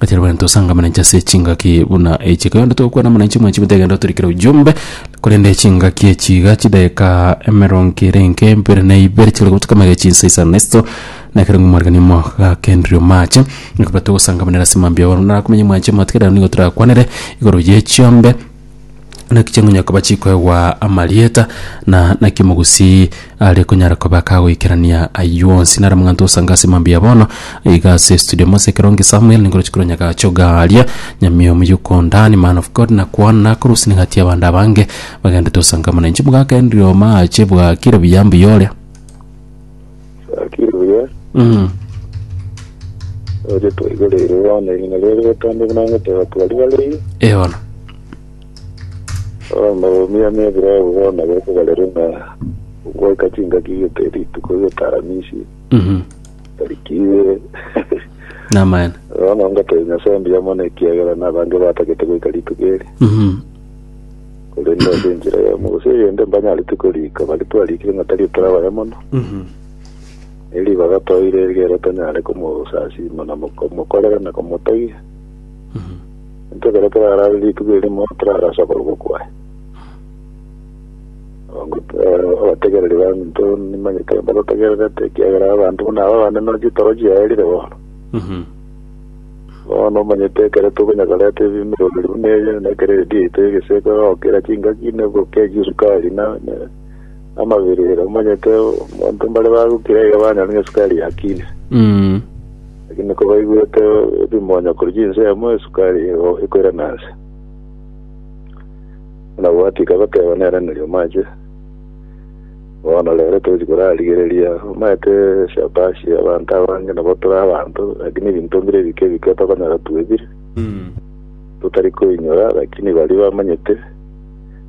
Gati rwani tosanga mananchi ase echingaki buna echi ekero yonde togokwana mananchi mwanchi mutegenda otorikere ujumbe korende echingaki echi iga chidakika emerongo ere enke mbere na ibere chikore gotuka magega chinsa isano na isato na ekero omorikani omogakenderia omache ekero togosangamanera ase mambia oro narakomenye mwanchi amato ekero nigo torakwanere igoro ye chiombe naki chingonye koba chikoegwa amarieta na naki omogusii are konyara koba kagoikerania ayio onsi nare omong'anto osanga ase mambia ya bono iga ase studio mose ekero nge samuel ningoroche korwa nyagache ogaria nyamio omuya okondani man of god nakwana nakorusia ning'atie abande abange bagendete osanga amo na inche mogakendirio omache bwakire buya mbuya oria. Gaki buya, Mm. oche twaigereire bono erina riaye rigotoonde buna ngotoora twari barei. Eono. Bono omiame ebirebu bono bekobarere ng'a goika chingaki gete rituko gete aramisi Mhm. tariki ibere. Namaene. Bono ngotoe Nyasae mbuya mono ekiagera nabange batagete goika rituko eri. Mhm. Korende ase enchera eyemo gose eyende mbanyarete koriika baria twariikire ng'a tari tore abaya mono, ne ribaga toire erigiya tonyare komosasiima na komokorera na komotegia. Intwe ekero torarare rituko erimo torare ase okorokwa kwaye. Abategereri bande intwe nimanyete mbagotegererete ekiagera abanto buna aba abande noroche torochiaerire bono. Bono omanyete ekero tokonyakoreta ebimutorori buna ebi, na ekero eredio yaito y'egeseeke egokira chingaki na ebugoka eye chi'esukari, na amabirire, omanyete abanto mbare bagokira iga banyore ng'a esukari yakire. Mm. Lakini kobaigwete ebimonyo korwa chinsemo, esukari ego ekoirana nse. Buna gwatika bateba neraneria omache. Bono rero tochi korarigereria, omanyete Shabashi, abanto abange nabo tore abanto, lakini ebinto mbire ebike ebike tokonyora twebire, totari koinyora, lakini baria bamanyete,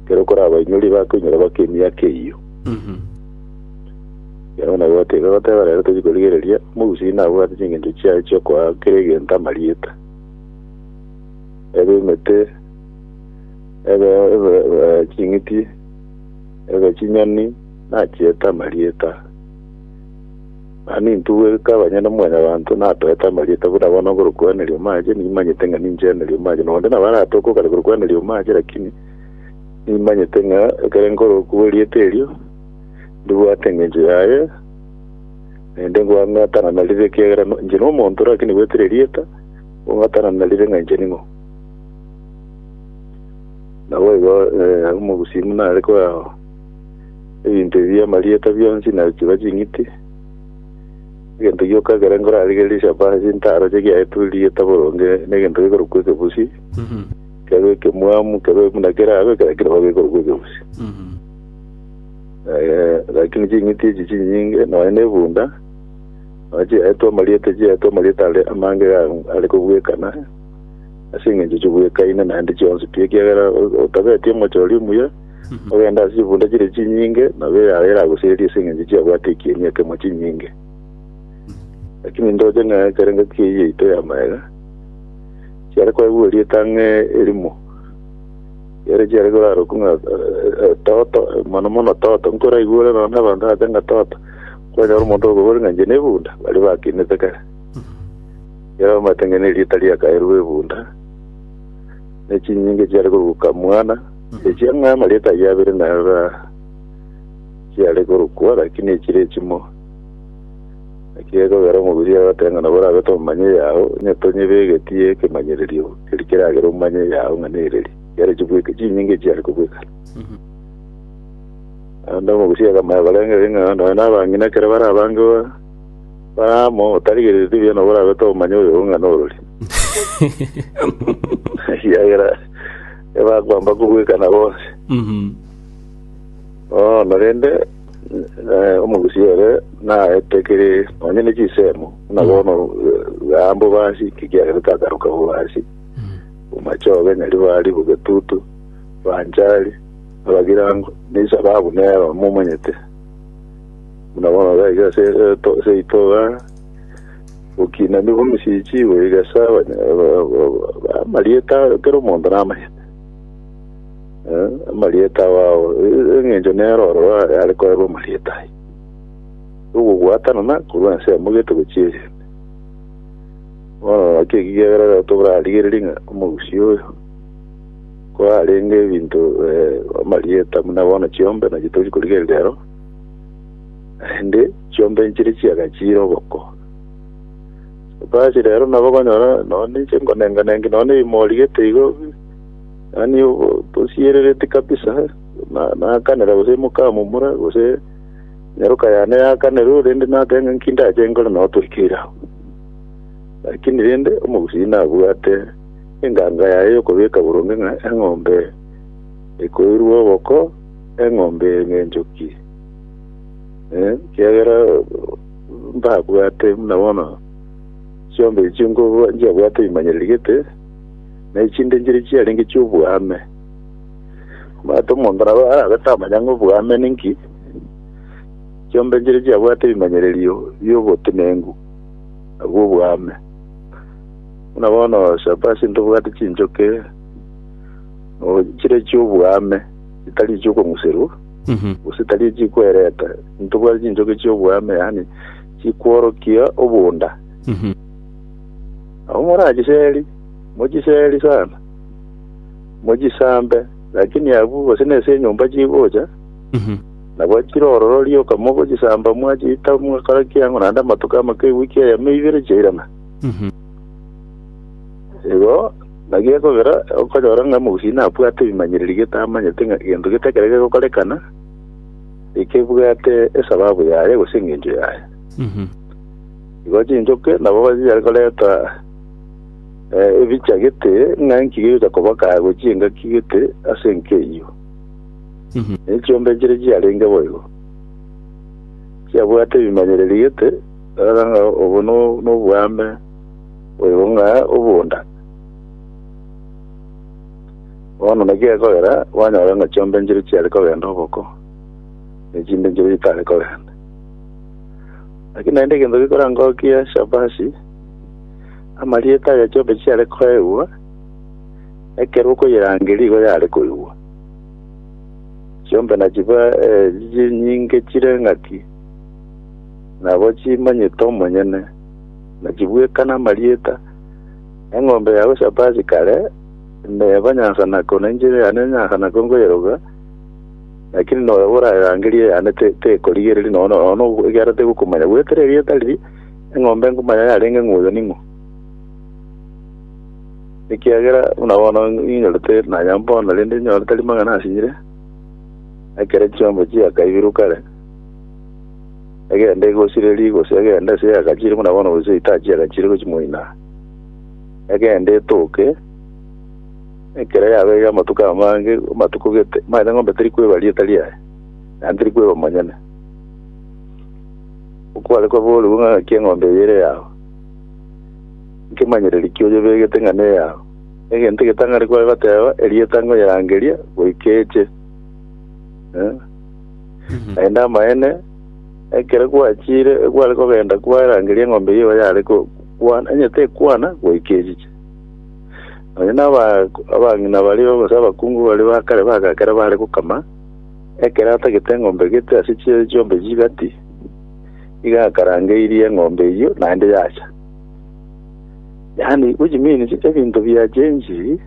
ekero okorabainyorie bakoinyora baka emiaka eyio. Ekero buna gote iga goteba rero tochi korigereria, omogusii nabwate chingencho chiaye chiokoa kera egento amarieta, ebe emete, ebe ebe ching'iti, Ebe chinyoni nachiete amarieta, na nintu bweka banyene Omwanyabanto natoete amarieta buna bono nkorokwaneria omache, nimanyete ng'a nincheneria omache, na onde nabo aratoke okare korokwaneria omache, lakini nimanyete ng'a ekero nkorokwa erieta erio, ndibwate engencho yaye, naende nkong'atana narire ekiagera no- inche nomonto, lakini bwete ririeta, nkong'atana narire ng'a inche ning'o. Naboigo omogusii nare koeao ebinto ebi amarieta bionsi na chiba ching'iti, egento gioka ekero nkorarigererie Shapara chinto aro chigiaetwe erieta boronge negento gekorokwa ekebusi, kebe ekemwamu, kebe buna kerabe, ekero keraba gekorokwa ekebusi. Eh, lakini ching'iti echi chinyinge, nonya na ebunda, nonya chiaetwe amarieta chiaetwe amarieta are amange iga are kobwekana, ase engencho chibwekaine naende chionsi pi, ekiagera otabeti omochie oria omuya, ogende ase chibunda chiria chinyinge, nabo eyaye eragosererie ase engencho chiabwate ekieni ekemo chinyinge. Lakini ndoche ng'a ekero engaki eyio yaito ya magega, chiare kwagua erieta ang'e erimo, ere chiare korarokwa ng'a eh, eh, toto, mono mono toto, nkoraigure nonya na abanto ache ng'a toto, kwanyora omonto okobora ng'a inche nebunda, baria bakinete kare. Yaraumete ng'a nerieta riakaeirwe ebunda, ne chinyinge chiare koruka mwana, echia ng'a amarieta ayio abere narora chiare korukwa, lakini echire echimo. Naki gekogera omobiri yagoteba ng'a nabo orabete omomanye eyao, onye tonyebegetie ekemanyererio keria keragere omanye eyao ng'a nereri, chiare chibweke, chinyinge chiare kobwekana. Naende omogusia akamoirakorengereria ng'a nonya nabang'ina ekero barabange ba- Abrahamu, otarigereretie ebiya nabo orabete obomanye oyo ng'a norori. Ekiagera ebakwamba kobwekana bonsi. Mhm. Bono rende eh, omogusi ere naete kere onye ne chisemo na bono gambo basi kikiagera takaruka bo basi omachoge nyari bari bogetutu banchari abagirango nisa babu nero momanyete Buna bono gaika ase eto- ase itoga, gokina nigo misichi, goigesa abanya- ba- ba- ba- amarieta kera omonto namanyete. Eh, amarieta ao e- eng'encho nero oro are are korerwa amarieta aye. Ogobwatanana korwa ense yamogete gochia eyende. Bono naki eki kiagera rero tobrarigereria ng'a omogusii oyo kwarenge ebinto eh, amarieta buna bono chiombe naki tori korigereria ero Naende chiombe nchiria chiagachiire oboko. Basi rero nabo okonyora nonya ninche nkonenga-nengi nonya ebiimo origete igo, yaani obo- bosierereti kabisa, na- naakanera gose emoka momura gose nyaroka yane yakanerwe rende nateba ng'a nki ndache nkore nabo toikeire abwo. Lakini rende omogusii nabwate enganga yaye yokobeka boronge ng'a eng'ombe ekoirwe oboko, eng'ombe eye ng'enchoki Eh, kiagera mbabwate buna bono chiombe echi nkobo- nchiabwate imanyererigete na echinde nchire chiarenge chi'obwame omanyete omonto nabo arabe tamanya ng'a obwame ninki chiombe nchire chiabwate ebimanyererio bi'obotenengu nabwo obwame buna bono shabasi ntobwate chinchoke o- chire chi'obwame etari echi'okong'userwa, gose etari echikwereta ntobwate chinchoki chi'obweame, yaani chikworokia obonda. Nabo morachiseri, mochiseri sana, mochisambe, lakini abwo gose nese enyomba chigocha, nabo chire ororo rioka mogochisamba mwachita mwakora kiang'o naende amatuko amake ewiki eyemo ibere chiairana. Igo. Na gekogera, okonyora ng'a mogusii nabwate ebimanyererio getamanyete ng'a egento gete ekero gegokorekana, ekebwate esababu yaye gose engencho yaye. Igo chinchoke nabo bachiare koreta eh, ebicha gete ng'a inki gegocha koboka gochia engaki gete ase enka eyio. Ne chiombe chire chiarenge boigo, chiabwate ebimanyererio gete, rora ng'a obo no- noboame Oyo ng'a obonda. Bono naki gekogera kwanyora ng'a chiombe nchiria chiare kogenda oboko, na echinde nchiria chitare kogenda. Lakini naende egento gekora ngokia Shabashi, amarieta aya chiombe chiare koegwa, ekero okoyerangeria igo yare koigwa. Chiombe nachiba eh, chinyinge chire ng'aki, nabo chimanyete omonyene. Naki bweka namarieta, Eng'ombe ya Yoshapati kare neba nyansanako, na enchera yane nyansanako nkoyeroga, lakini noyo oraerangerie eyane tekorigereria nonya nono, ekiagera tegokomanya goetera erieta riria eng'ombe nkomanya yarenge ng'a oyo ning'o, ekiagera buna bono ninyorete nanya mbono, rende ninyorete rimang'ana asire, ekero chiombe chiakaibirwe kare. egende egosirerie, gose egende ase eyagachire buna bono, gose etachi yagachire gochia moino aa, egende etoke, ekero yabeire amatuko amange, amatuko gete, manyete eng'ombe teri kweba rieta riaye, naende teri kweba omonyene. Okware kwaboorigwe ng'a ng'aki eng'ombe eye ere eyao, nkemanyereria ki oyebegete ng'a neyao? Egento egetang'ani kwabateba, erieta ngoyerangeria goika eche. Eh. Naende amaene, ekero gwachiire egware kogenda kwarangeria eng'ombe eyio yare ko- kwana, onye tekwana goika echiche. Nonya na aba- abang'ina baria gose abakungu baria ba kare baga ekero bare gokama, ekero atagete eng'ombe gete ase chie chiombe chigati, iga akarangeirie eng'ombe eyio naende yacha. Yaani, which means, ebinto bia chenjiri,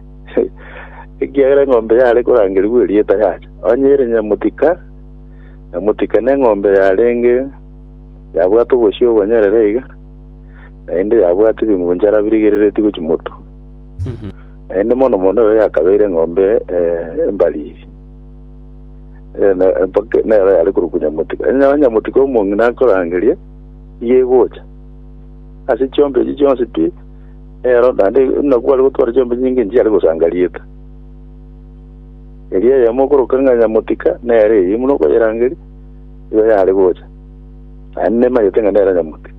ekiagera eng'ombe yare korangerigwa erieta yacha. Onye ere nyamotika, nyamotika neng'ombe yarenge yabwate obosio obonyerere iga, naende yabwate ebingunchara birigereretie gochia motu. Naende mono mono ero yakabeire eng'ombe eh, embariri. Eh, na- mpaka nero yare korokwa nyamotika. Onye nyamotika omong'ina akorangeria, iga egocha. ase chiombe echi chionsi pi nero, naende inakwo are gotwara chiombe nyinge nchiare gosanga rieta. Erio eyemo okoroka ng'a nyamotika nere eyio buna okoyerangeria, nigo yare gocha, naende nemanyete ng'a nere nyamotika.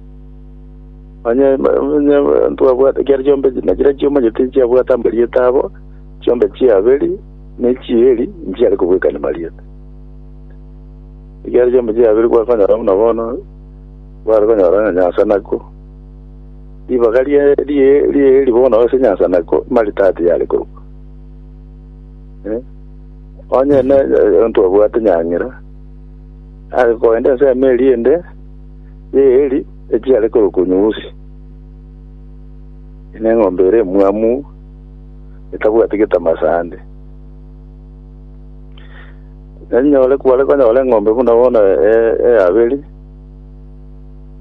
Onye onye twabwate ekiagera chiombe echi nachira chiomanyete nchiabwate amarieta abo, chiombe chia Abeli ne chia Eli nchiare kobwekania marieta. Ekiagera chiombe chia Abeli gwakonyora buna bono Bare konyora ng'a nyansanako. Ribaga ri'eeri bono ase nyansanako Maritati yare korokwa. Onye ntwabwate nyang'era, are koenda ensemo eria ende y'eeri echi yare korokwa Nyuusi, neng'ombe ere emwamu etabwati getama sande. Kware konyora eng'ombe buna bono eya babere.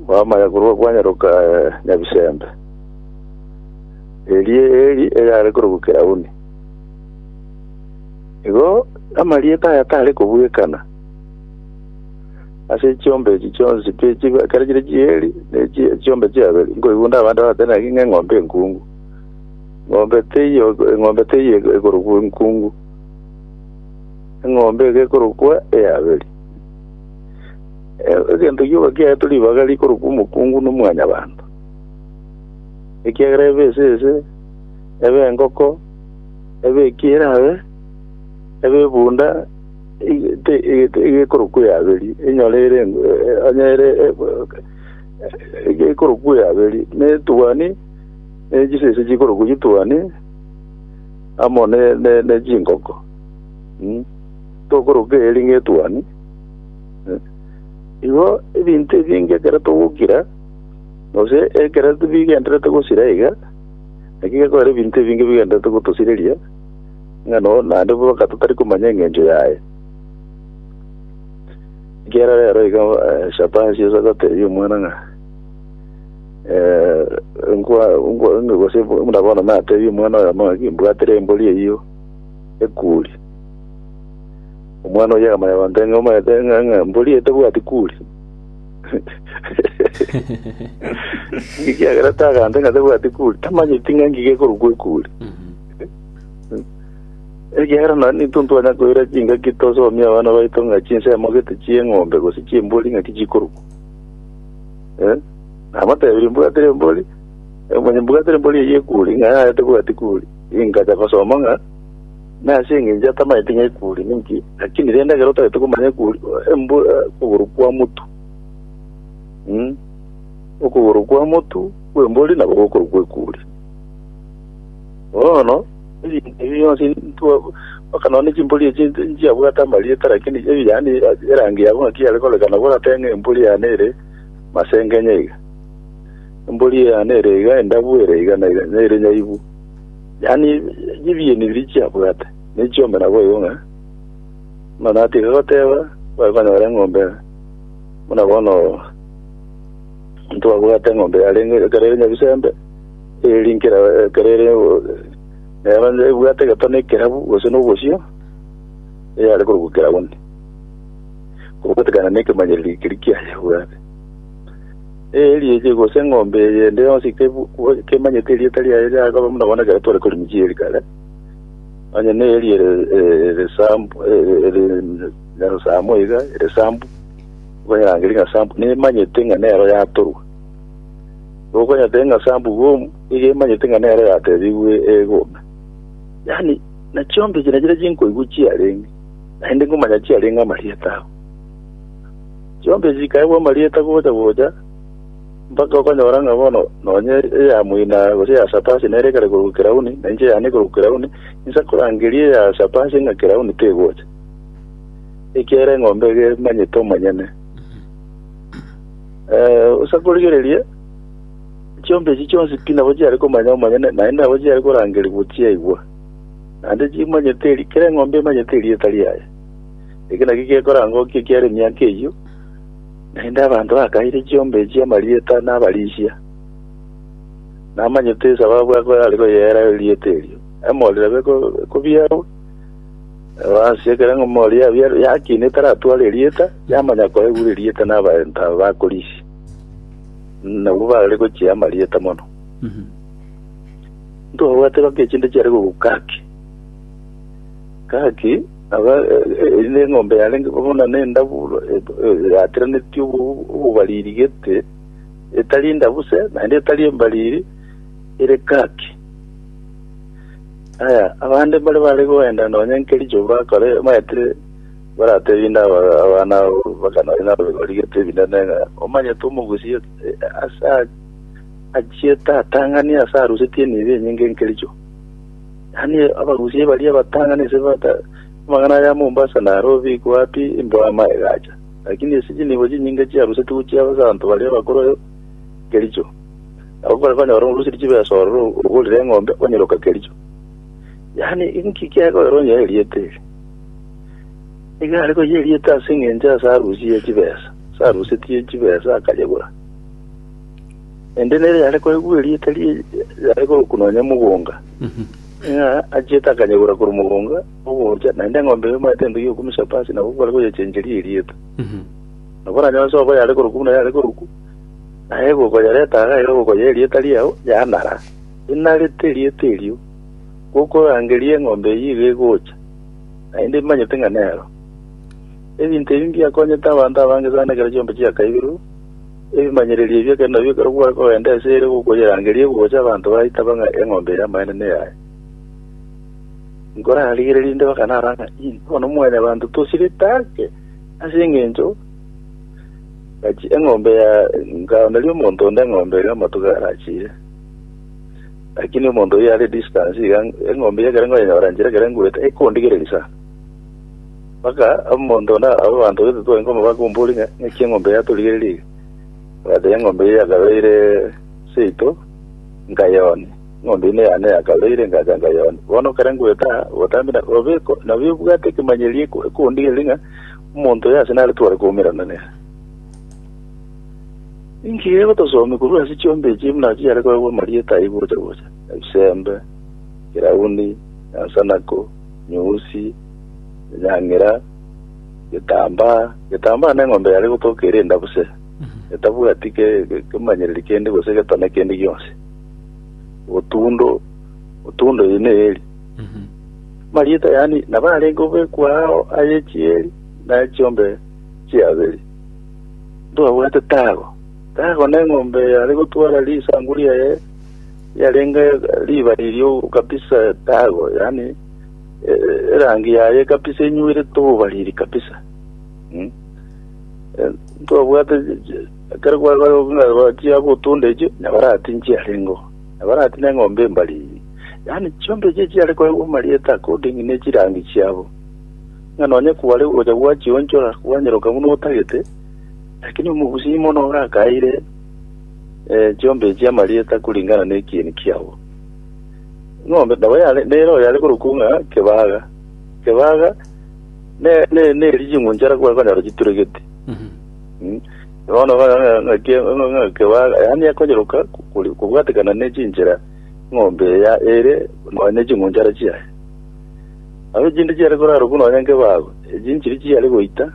Bwamanya korwa kwanyaroka eh, Nyabisembe. Erie eri eyare korokwa Kirauni. Igo amarieta aya tare kobwekana. Ase chiombe echi chionsi pi chibe- kera chire chieri ne chi- chiombe chiabere nkoigunda abande batene naki ng'a eng'ombe enkungu. Ng'ombe teiyo eng'ombe teiyo ekorokwa enkungu. Eng'ombe iga ekorokwa eyaberi. Egento gioka kiaetwe ribaga rikorokwa omokungu n'omwanyabanto, ekiagera ebe esese, ebe engoko, ebe eki erabe, ebe ebunda, egekorokwa eaberi, enyore ere onye ere egekorokwa eaberi, ne etuani, ne chisese chikorokwa chituani, amo ne chingoko. Tokoroka eeri ng'etuani. Igo ebinto ebinge ekero togokira, gose ekero tibigenderete gosira iga, naki gekogera ebinto ebinge bigenderete gotosireria, ng'a no naende boka totari komanya engencho yaye. Ekiagera rero iga eh, Shabashi ase agoteebia omwana ng'a eh, nkwa nkwa gose buna bono nateebie omwana oyomo ng'aki, mbwatire embori eyio ekuri. Omwana oyio akamanya gontera ng'a omanyete ng'a ng'a mbori eye tebwati kuri. Ekiagera tagantete ng'a tebwati kuri, tamanyeti ng'a ngige ekorokwa ekuri. Ekiagera nonye nintwe ntwanya koira chingaki tosomie abana baito ng'a chinsemo gete chi'eng'ombe gose chi'embori ng'aki chikorokwa. Eh? Namotebirie mbwatire embori, eh, manye mbwatire embori eyio ekuri, ng'a yaya tebwati kuri. Ingacha gosoma ng'a Nase engencho atamanyete ng'a ekuri ninki, lakini rende ekero otagete komanya ekuri, embu okogoro kw'amotu, mm, okogoro kw'amotu kw'embori nabo gokorokwa ekuri. Bono, ebinto ebi bionsi ntwa, mpaka nonya chimbori echi nti- nchiabwate amarieta, lakini ebi yaani erangi yabo ng'aki yare korekana, boratebe ng'a embori yane ere masengenya iga, embori yane ere iga, endabu ere iga, nere nere nyaibu. Yaani chibieni biria chiabwate ne chiombe nabo igo ng'a, buna natiga goteba, bari konyora eng'ombe buna bono ntwabwate eng'ombe yarenge ekero ere Nyabisembe, eri nkera ekero ere neba nebwate egetone ekerabu gose na obosio, eyare korokwa keraboni, kobatekana na ekemanyerero ekeria kiaye ebwate. Erieche, gose eng'ombe eyende yonsi kemanyete erieta riaye riakaba buna bono ekero tware korwa Michieri kare, onye neeria ere eresambu, ere nyarosamo iga, eresambu, okonyerangeri ng'a sambu, nemanyete ng'a nero yatorwa. Okonyete ng'a sambu boom, iga emanyete ng'a nero yatebigwe egome. Yaani, na chiombe echi nachire chinkoigwa chiarenge, naende nkomanya chiarenge amarieta abo. Chionsi echi chikaegwa amarieta gocha-gocha, mpaka okonyora ng'a bono nonya eya moina gose eya Sapasi nere ekare korokwa Kirauni, na inche eyane ekorokwa Kirauni, insa korangeria eya Sapasi ng'a Kirauni tegocha, ekiagera eng'ombe iga emanyete omonyene. Eh, osa korigereria, chionsi echi chionsi pi nabo chiare komanya omonyene, naende nabo chiare korangeria gochiaigwa. Naende chimanyete eri, kera eng'ombe emanyete erieta riaye. Eke nakio gekorangwa okia ekiara emiaka eyio, naende abanto bakaire chiombe echio amarieta na abarisia, namanyete esababu abo are koyeera erieta erio. Emori nabo eko- ekobiarwa, nabo ase ekero emori yabiarwa yakina etaratware erieta, yamanya koegura erieta na abaanto aba bakorisia, nabwo bare gochia amarieta mono. Ntobwate baka echinde chiare kobua gaki, gaki Nabo erio neng'ombe yarenge buna nendaburu yatiranetie obobariri gete, etari endabuse, naende etari embariri, ere kaki. Aya, abande mbare bare goenda nonya nkericho bakore maete baratebie inde abana abo baka nonya nabegori gete ebinene ng'a omanyete omogusie ase achiete atang'ani ase arusetie enibo enyinge nkericho. Yaani abagusie baria batang'ani ase amang'ana aya Mombasa Nairobi iko wapi imboama egacha lakini ase chinibo chinyinge chiarusetigwe chia abasanto baria abakoro e Kericho nabo mbare banyore orusirie chibesa ororo ogorire eng'ombe onyeroka Kericho yaani inki kekoera onye eriete eri nigo are koyia eriete ase eng'encho ase arusie chibesa ase arusetie chibesa akanyegora Naende nere yare koigwa erieta rie yare korokwa nonya mogonga, ng'a achiete akanyegora korwa mogonga ogocha, naende eng'ombe eye omaete entugi okomisapa ase nabo kware koyechencheria erieta. Nabo onye onsi obo yare korokwa buna yare korokwa, naye gokoyereta iga iga gokoyea erieta riao yanara, enarete erieta erio, gokorangeria eng'ombe eyio iga egocha, naende emanyete ng'a nero. Ebinto ebi mbiakonyete abanto abange sana ekero chiombe chiakaiberwe. Ebimanyererio ebio ekero nabio ekero gware kogenda ase ere gokoyerangeria egocha abanto baitaba ng'a eng'ombe ere amaene neyaye. Nkorarigererie inde bakanara ng'a ii bono mwanyabanto tosirete ake ase engencho ng'achi eng'ombe ya nkaoneria omonto onde eng'ombe ere amatuko arachire. Lakini omonto oyio are distance iga eng'ombe eyio ekero nkoyenyora nchire ekero ngurete ekondigereria sana. Mpaka omonto onde abe abanto gete twai nkomobaka ombori ng'a ng'aki eng'ombe yatorigereria iga. Agoteba eng'ombe eye yakabeire seito nkayonia, eng'ombe eye neyane yakabeire ngacha nkayonia. Bono ekero ngoeta aa obotambe na obe nabwo ebwate ekemanyereri eko- ekondigereria ng'a omonto oyo ase nare tware koumerana nere. Ninki iga egotosomia korwa ase chiombe echi buna chiare koegwa amarieta ayio gocha gocha, Ebisembe, Kirauni, Esanako. nyusi, enyang'era, getambaa, getambaa na eng'ombe yare gotoka ere endabuse, etabwati ke- ke- kemanyereri kende gose getone kende gionsi, otundo, otundo eye neyeri marieta yani nabarenge obekwa ao aye chieri na chiombe chiaberi ntwabwate tago tago na eng'ombe yare gotwara risangu riaye Yarenge riba riria kabisa tago, yaani erangi yaye kabisa enyweirete obobariri kabisa. Mm. Eh, Twabwate ekero gwachia gotunda echio, nabarati nchiarengo. Nabarati na eng'ombe embariri. Yaani chiombe echi chiare koegwa amarieta according ne chirangi chiabo. Ng'a nonye kware gocha gwachionchora kwanyeroka buna otagete, lakini omogusii mono orakaire chiombe echi amarieta kuringana nekieni kiabo. Ing'ombe nabo yare nere oyare korokwa ng'a Kebaga. Kebaga ne ne neri ching'unchara kwa konyora chituregeti. Mm. Bono ba- ng'a- ng'a ke- ng'a- ng'a Kebaga yani ekonyeroka kori- kobwatekana ne chinchera ng'ombe eya ere nonya ne ching'unchara chiaye. Nabo chinde chiare korarokwa nonya nkebago, echinchiri chiare goita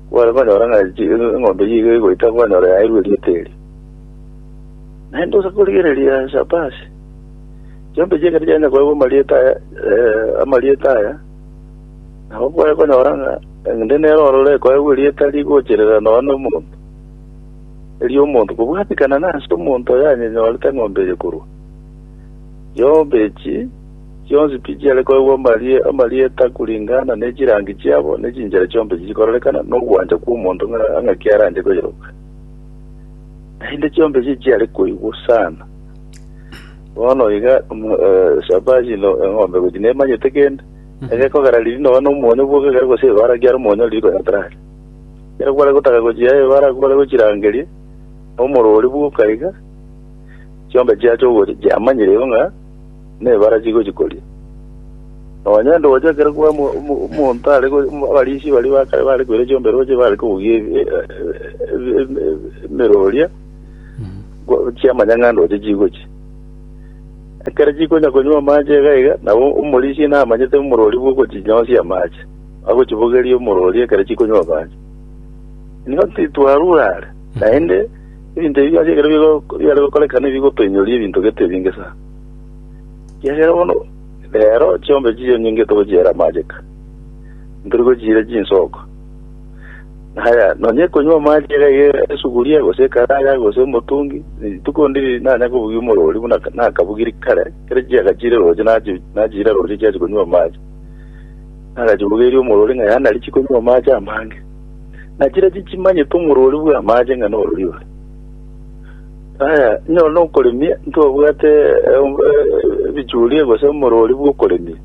Kware konyora ng'a chi- eng'ombe eyio iga egoita kwanyora yairwe erieta erio. Naende ose korigereria ase Abasi, chiombe echi ekero chiagenda koegwa amarieta aya, eh, amarieta aya, nabo kware konyora ng'a ende nere ororo ekoegwa erieta rigocherera nonya na omonto, erio omonto kobwatikana nase omonto oyo yanyenyorete eng'ombe eye korwa. Chiombe echi Chionsi pi chiare koegwa amarieta kuringana ne chirangi chiabo, ne chinchera chionsi chikororekana nogwancha kw'omonto ng'aki aranche koyeroka. Naende chionsi echi chiare koigwa sana. Bono iga Shaba chine eng'ombe gochi nemanyete kende, egekogera riiri nonya nomonyo bwoka ekero gose ebara kiare omonyo riiri konya tarari. Ekero kware gotaka gochia ebara kware gochirangeria, nomorori bwoka iga, chionsi chiacha ogocha chiamanyire igo ng'a. nebarachi gochia koria. Nonya ndooche ekero kwa omo- omo- omonto are go- omo- abarichi baria ba kare bare koira chiomberoche bare kobugia ebi- e- e- e- e- emeroria gwa- chiamanya ng'a ndooche chigochia. Ekero chikonya konywa amache iga iga, nabo omorisia namanyete omorori bwa ogochinyosia amache, agochibogeria omorori ekero chikonywa amache. Nigo titwarure are, naende Ebinto ebi biacha ekero bigo- biare gokoreka nigo bigotoinyoria ebinto gete ebinge sana. Ekiagera bono rero chiombe chiria onyengete ogochiera amache ka, ntori gochiira chinsoko. Na haya, nonya ekonywa amache iga iga esuguria, gose ekaraga, gose omotungi, rituko ndiri nanya kobugia omorori buna ka- nakabugiri kare, ekero chiaga chire roche nachi- nachiira roche chiachi konywa amache. Nagachibogeria omorori ng'a yaya nari chikonywa amache amange. Na chiria chichimanyete omorwori bw'amaache ng'a norori ore. Aya, inyora nokoremia, ntobwate ebichuria gose omorwori bw'okoremia,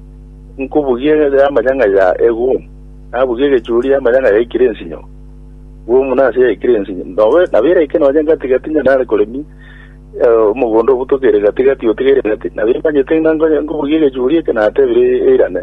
nkobugia yamanya ng'a ya egumu, nabugia egechuria yamanya ng'a yaikire ensinyo, gumu nase yaikire ensinyo. Nobe nabo eraike nonye gati-gati onye nare koremia eh, omogondo obutokeire gati-gati otigeire gati, nabo emanyete ng'a nkonya- nkobugia egechuria eke natebire eirane.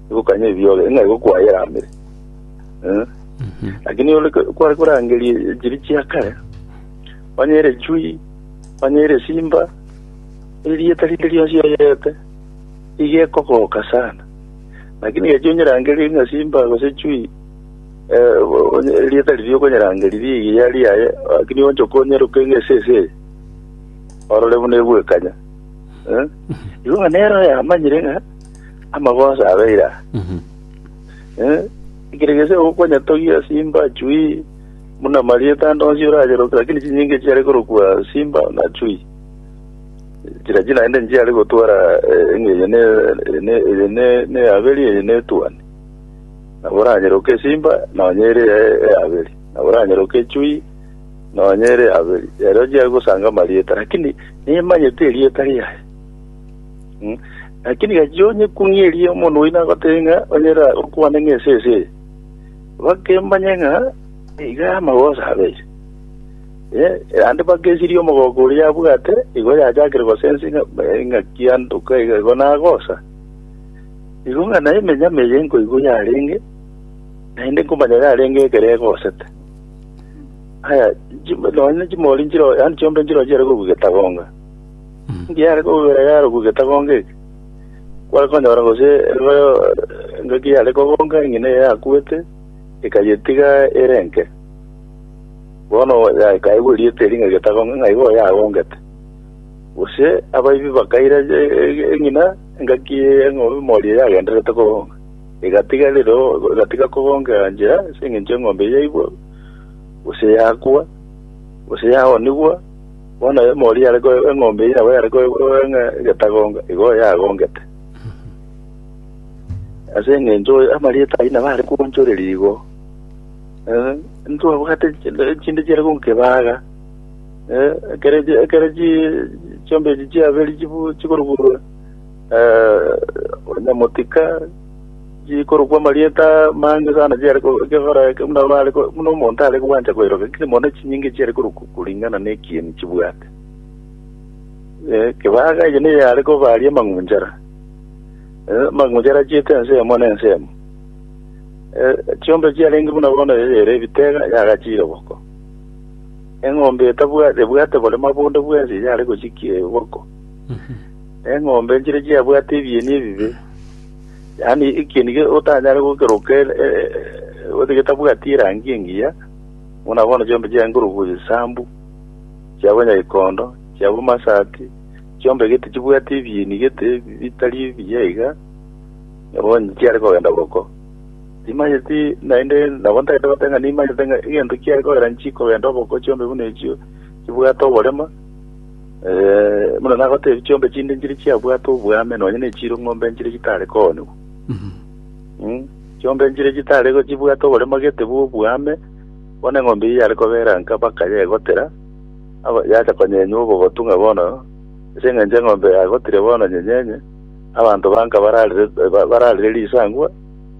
egokanya ebiore, ng'a egokwayeramere. Eh? Lakini ore ko- kware korangeria chiri chia kare, onye ere chui, onye ere simba, erieta rinde rionsi oyerete, iga ekogoka sana. Lakini gechi onyerangerie ng'a simba gose chui, eh, onye- erieta riria okonyerangeria riigi yari yaye, lakini onchoke onyeroke ng'a ese ese eye, orore buna egwekanya. Eh? Igo ng'a nero yamanyire ng'a amagoso abe ira Mhm. Eh, ekero gese ogokonya togia simba chui muna marieta ande onsi oracheroke lakini chinyinge chiare korokwa simba na chui chira china ende nchiare gotwara eh, eng'enye ne ne- eye ne- ne aberi eye ne tuani nabo oranyeroke simba nonyere aberi nabo oranyeroke chui nonyere aberi ero chiare gosanga marieta lakini nimanyete erieta riaye Mm. Lakini gachia onyekung'erie omonto oino agotebie ng'a onyera okwane ng'a ese ese eye. Bake mbanye ng'a iga amagoso abeche. Eh, ande bake esirie omogoko oria yabwate, igo yachakire gosensi ng'a eh, ng'a kiandoka iga igo nagosa. Igo ng'a naye emenyama eye nkoigwa yarenge, naende nkomanya yarenge ekero egosete. Aya, chim- nonya chimori nchiro, yaani chiombe nchiro chiare kobua getagonga. Ngiare kogwera yaroku getagonga eke, kware konyora gose eroyo engaki yare kogonga eng'ina eye yakuete, ekayetiga ere enke. Bono yakaigwa erieta eria ng'a getagonga ng'a igo yagongete. Gose abaibi bakaira eng'ina engaki y'eng'ombe mori eye yagendererete kogonga, egatiga rire egatiga kogonga enchera ase eng'encho eng'ombe yaibwa, gose yakwa, gose yaonigwa. Bono aye omori are ko eng'ombe eye nabo yare ko enge getagonga, igo yagongete. Ase eng'encho amarieta ayio nabo are koonchoreria igo. Eh, ntwabwate chinde- chinde chiare gonkebaga. Eh, ekero chi- ekero chi- chiombe echi chiaberi chibu- chikoruburwa, Onye motika chikorokwa amarieta amange sana chiare kegora eke buna bare buna omonto are gwancha koeroka ekere mono chinyinge chiare korokwa koringana nekieni chibwate ekebaga eye niyo yare kobaria amang'unchara amang'unchara achiete ense eyemo na ense eyemo chiombe chiarenge buna bono eye ere ebitega yagachire boko eng'ombe etabwate ebwate bore mabonde bwensi yare gochikia boko Eng'ombe enchire chiabwate ebieni ebibe, yaani ekieni ge- otanyare gokeroka e- e- e- gose getabwati erangi engiya, buna bono chiombe chiaye nkorokwa egesambu, chia abanyagekondo, chia abamasati, chiombe gete chibwate ebieni gete bitari ebiya iga, nabo onye chiare kogenda boko. Timanyeti naende nabo ntagete goteba ng'a nimanyete ng'a egento kiare kogera nchikogenda oboko chiombe buna echio chibwate oborema, Buna nagoteebie, chiombe chinde nchiria chiabwate obwame nonya nechire ng'ombe nchiria chitare koonigwa. Chiombe nchiria chitare chibwate oboremo gete bw'obwame, bono eng'ombe eyio yare kobeera nka baka yegotera, aba- yacha konyenywa obogotu ng'a bono ase eng'encho eng'ombe yagotire bono nyenyenye, abanto ba nka bararire ba- bararire risangwa,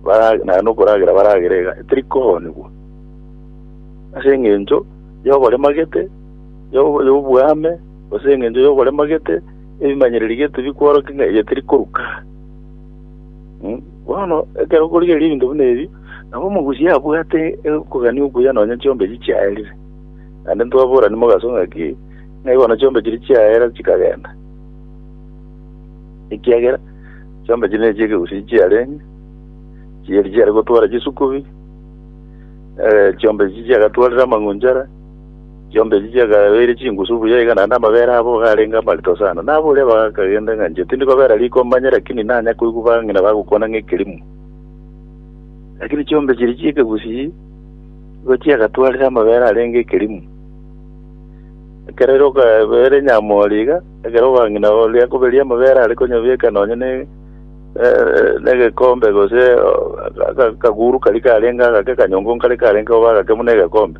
bara naende okoragera baragere iga, teri koonigwa. Ase eng'encho y'oboremo gete. y'oboame, gose engencho y'oborema gete, ebimanyereri gete bikworokia ng'a eye teri koruka. Mm, Bono ekero okorigereria ebinto buna ebi, nabo omogusi abwate okogania okuya nonya chiombe echi chiaerire. Naende ntwaborani mogaso ng'aki, ng'ai bono chiombe chiria chiaera chikagenda. Ekiagera chiombe chiria nechia ekegusii chiarenge, chiria chiare gotwara chisukubi, eh, chiombe echi chiagatwarire amang'unchara, Chiombe echi chiagabeire chingusu buya iga naende amabere abo garenge amarito sana. Naboria bagakagenda ng'a inche tindi kobera riko manye lakini nanya koigwa bang'ina bagokwana ng'a ekerimo. Lakini chiombe chiria chi'ekegusii nigo chiagatwarire amabere arenge ekerimo. Ekero ere okabera enyamori iga, ekero obang'ina oria akoberia amabere are konyabieka nonye ne eh, negekombe gose eh, aka- akaguru karia karenge agake akanyongo nkare karenge koba agake buna egekombe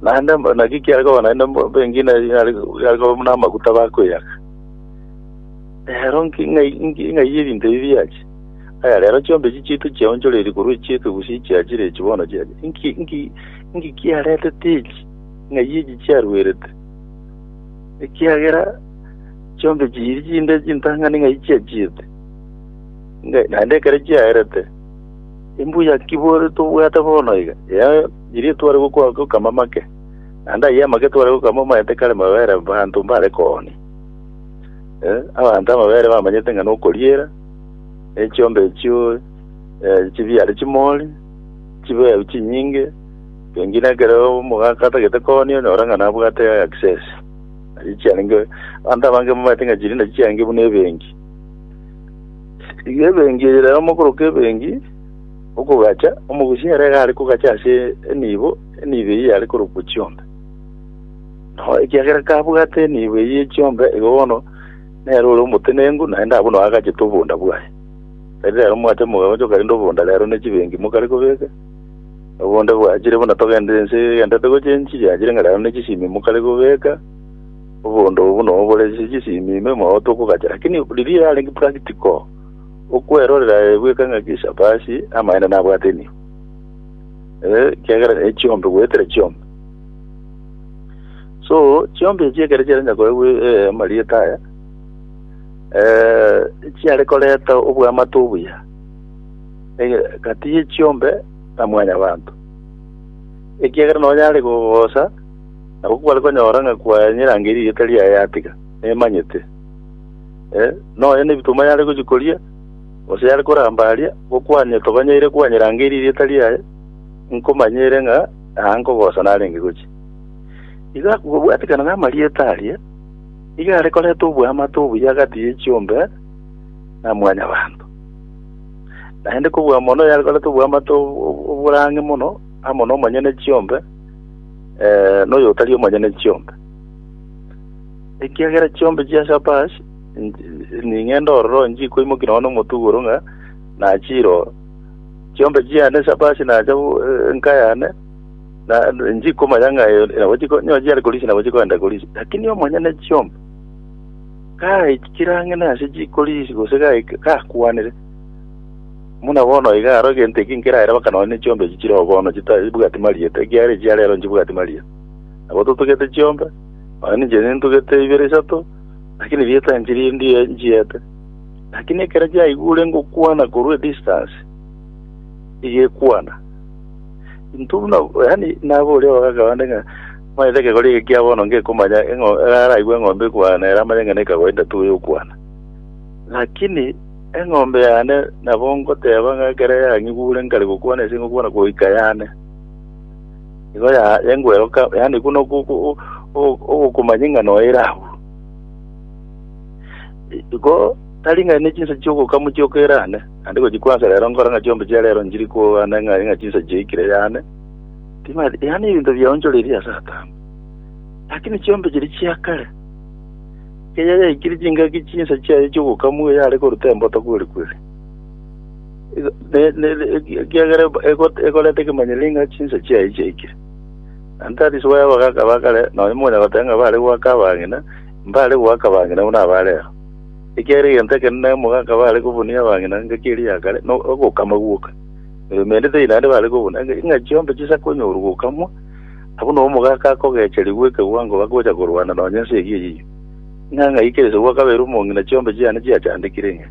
Naende naki kiare koba naende bengine yare yare koba buna amaguta bakweyaka. Rero nki- ng'ai- nki- ng'ai ebinto ebi biache? Aya rero chiombe echi chiaito chiaonchoreirie korwa echiaito gose chiachire echi bono chiache. Nki nki nki kiaretete echi? Ng'ai echi chiarwerete? Ekiagera chiombe chiri chinde chintang'ani ng'ai chiachiete? Ngai- Naende ekero chiaerete, imbuya ki bore tobwate bono iga? Yaye Erio tware gokwa gokama amake, naende ayio amake tware gokama omanyete kare mabere abanto mbare koonia. Eh, abanto amabere bamanyete ng'a nokoriera, ne chiombe echio eh, chibiare chimori, chibeeu chinyinge, pengine ekero omogaka atagete koonia onyora ng'a nabwate access. Nachi chiarenge, abanto abange bamanyete ng'a chirinde chiarenge buna ebenki. Iga ebenki eye rero mokoroka ebenki, Okogacha, omogusi ere iga are kogacha ase enibo, enibo eyio yare korokwa chiombe. Nao ekiagera kabwate enibo eyio ye chiombe, igo bono nere ore omotenenku, naende abwo nao agachete obonda bwaye. Tari rero mwate mogagochoka rende obonda rero ne chibenki mokare kobeka, na obonda bwachire buna togenderete ense egenderete gochia enchiri yachire ng'a rero ne chisimi mokare kobeka, obonda obwo nobore ase chisimi ime, mogotokogacha. Lakini riria yarenge practical. Okwerorera ee bweka ngaki Eshafaashi amaene nabwate enio ee, ekiagera ne chiombe goetera chiombe. So chiombe echi ekero chiarenge koegwa ee, amarieta aya ee, chiare koreta obwamate obuya ege- gati ye chiombe na mwanyabanto, ekiagera nonya are gogosa nabo kware konyora ng'a kwanyerangeirie erieta riaye yatiga, nemanyete. Eh, nonya nebitoma yare gochia koria, gose yare koramba aria, gokwanire tobanyeire kwanyeira ange eri erieta riaye, nkomanyere ng'a aa nkogosa narenge gochia. Iga kobwatikana namarieta aria, iga are koreta oboamate obuya agati ye chiombe na mwanyabanto. Naende kobua mono yare koreta oboamate ob- ob- oborang'e mono amo nomonyene chiombe, eh, noyotari omonyene chiombe. Ekiagera chiombe chia Shabash ning'ende ororo nchikoimoki nonya nomotugoro ng'a nachire oo. Chiombe chiane Shabash nacha enka yane, na nchikomanya ng'a eyo nabo chiko nyo chiare korisia nabo chikoenda korisia. Lakini omonyene chiombe gaikire ang'e nase chikorisia gose gaika gakwanire, buna bono iga aro egento eki nkeraere baka nonya ne chiombe echi chire oo bono chitabwati marieta, ekiagera echi chiare ero nchibwati marieta. Nabo totugete chiombe. Onye ninche nintugete ibere isato, lakini rieta inche riria ndie nchiete. Lakini ekero chiaigure ngokwana korwa edistance, igekwana. Intwe buna, yani nabo oria ogaka bande ng'a, manyete ekegori eke kia bono ngekomanya eng'o, araigue eng'ombe ekwana, ere amanye ng'a neka kawaida tu eyokwana. Lakini eng'ombe yane nabo ngoteba ng'a ekero yang'igure nkare gokwana ase ngokwana goika yane. Nigo ya- yankweroka, yaani buna oku- oku- o- o- ogokumanya eng'ana oye ere agwo. I- Igo tari ng'a ne chinsa chi'ogokamwa chioka ere ane, naende gochia kwansa rero nkore ng'a chiombe chia rero nchiri koana ng'a ng'a chinsa chiaikire yane, timanyeti, yaani ebinto biaonchoreirie ase atambe. Lakini chiombe chiria chia kare, ekeya yaikire chingaki chinsa chiaye chi'ogokamwa yare koruta embotoka ore kweri. Igo- ne- ne- ne- eki- ekiagera eb- ego- egoreta ekemanyero ng'a chinsa chiaye chiaikire na ntarisoa y'abagaka ba kare nonya monya goteba ng'a bare goaka abang'ina mbare goaka abang'ina buna aba rero ekiagera egento ekenene omogaka bare kobunia abang'ina engaki eria ya kare no- ogokama gwoka Eh, mende tei naende bare kobuna Enga- ng'a chiombe chisa konyorwa gokamwa abuna omogaka akogecherigwa ekewango bagocha korwana nonya ense eria eyio ng'a ng'aikire ase goaka baire omong'ina chiombe chiane chiachandekire ng'a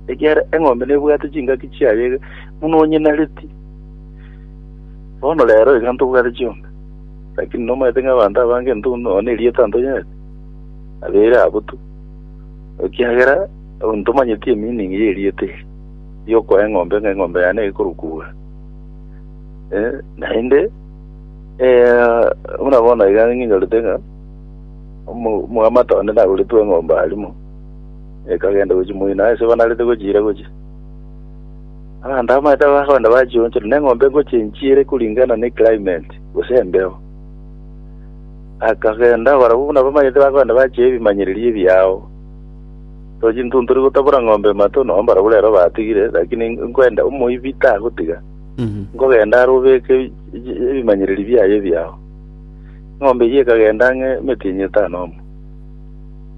Ekiagera eng'ombe nebwate chingaki chiaye buna onyenareti. Bono rero iga ntobwate chionsi, lakini nomanyete ng'a abanto abange intwe buna one erieta ntonyenereti, abeire abwo tu, ekiagera ntomanyeti emeaning y'erieta eri, riokoa eng'ombe ng'a eng'ombe yane ekorwa kugura. Eh, naende eh, buna bono iga ng'inyorete ng'a omo- omwamate one nagoretwe eng'ombe arimo Ekagenda gochia moino aase banarete gochiira gochia. Abanto abamaete bagakogenda bachionchire, na eng'ombe egochia enchiire kuringana ne climate, gose embeo. Akagenda barabwo buna bamanyete bakogenda bachia ebimanyereri ebiao. So chintuntori gotabora ng'ombe mato, nonye barabwo rero batigire, lakini nkwenda omoibi tagotiga. Nkogenda are obeke ebimanyereri biaye ebiao. Eng'ombe eyio ekagenda ang'e emetienyi etano omo.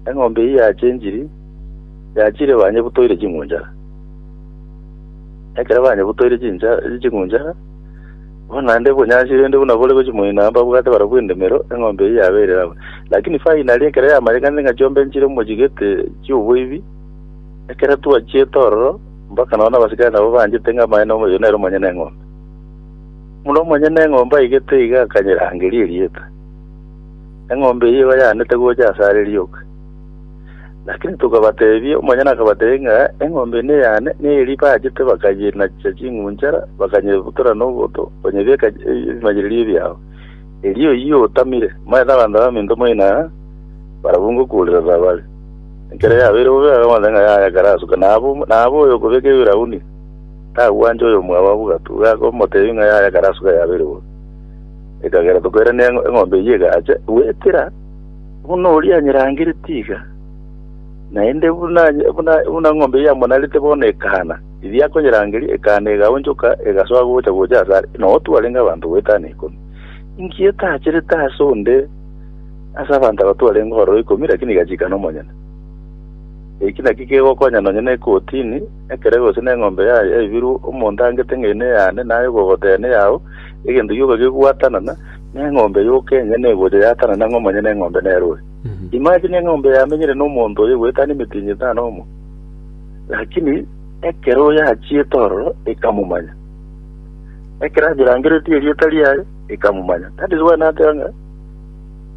Eng'ombe eyio yachenchiri, yachire banyebutoire ching'unchara. Ekero banyebutoire chincha- ching'unchara, bono naende obonyansi rende buna bore gochia moino aa mbabwate barabwo endemero, eng'ombe eyio yaberire abwo. Lakini finally ekero yamanyekanire ng'a chiombe nchire mochigete chi'oboibi, ekero twachiete ororo, mpaka nonya na abasikari nabo banchete ng'a amaene oyo nere omonyene eng'ombe. Buna omonyene eng'ombe aigete iga akanyerangeria erieta. Eng'ombe eyio igo yaanete gocha asare rioka. Lakini tokabatebia, omonyene akabatebia ng'a eng'ombe eye neyane, na eria baachete bakanyinacha ching'unchara, bakanyebutora noboto, banyebieka ebimanyererio biabo. Erio oyio otamire, moete abanto b'aminto moino aa, barabwo ngokuurirana bare. Ekero yabeire bobe akamotebia ng'a yaya kare asuka, na aba na aba oyokobeka ebirauni tagwancha oyomwabo abwo gatu, iga akamotebia ng'a yaya kare asuka yabeire bobe. Ekagera tokoirania eng'o- eng'ombe eyio egacha goetera buna oria anyerangereti iga, naende buna anye- buna buna eng'ombe eyio amonarete bono ekana. Riria akonyerangeria, ekana egaonchoka, egasoa gocha gocha ase are, na otu arenge abanto goeta na ikomi. Inki etacherete ase onde ase abanto aba twarenge ororo ikomi, rakini igachika nomonyene? Eki nakio kegokonya nonye na ekotini, ekerebe gose neng'ombe ya- yaibirwe omonto angete ng'a eye neyane, naye okogotea neyao, Egento gioka gegwatanana neng'ombe yoka enye negocha yatanane ang'e omonyene eng'ombe nere ore. Imagine eng'ombe yamenyire nomonto oye goetania emitinyi etano omo, lakini ekero oye achiete ororo ekamomanya. Ekero anyerangeretie erieta riaye ekamomanya. That is why nateba ng'a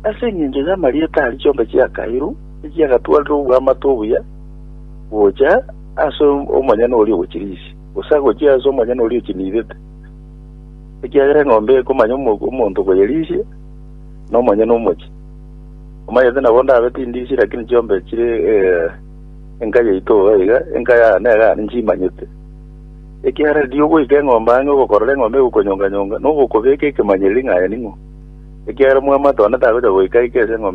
ase engencho y'amarieta aria chionka chiakairwe echiagatwarire oboamate obuya gocha ase omonyene oria ogochirisia, gose agochie ase omonyene oria ochiniidete. Ekiagera eng'ombe ekomanya omogwa omonto koyerisia, nomonyene omochie. Omanyete nabo ndabe tindisia, lakini chiombe chire eh, enka yaito oo iga, enka yane negane nchimanyete. Ekiagera riria ogoika eng'ombe ang'e ogokorora eng'ombe egokonyonga-nyonga, nogo okobeka ekemanyereri ng'a aye ning'o, ekiagera omwami Mateo onde tagocha goika aike ase eng'ombe eye.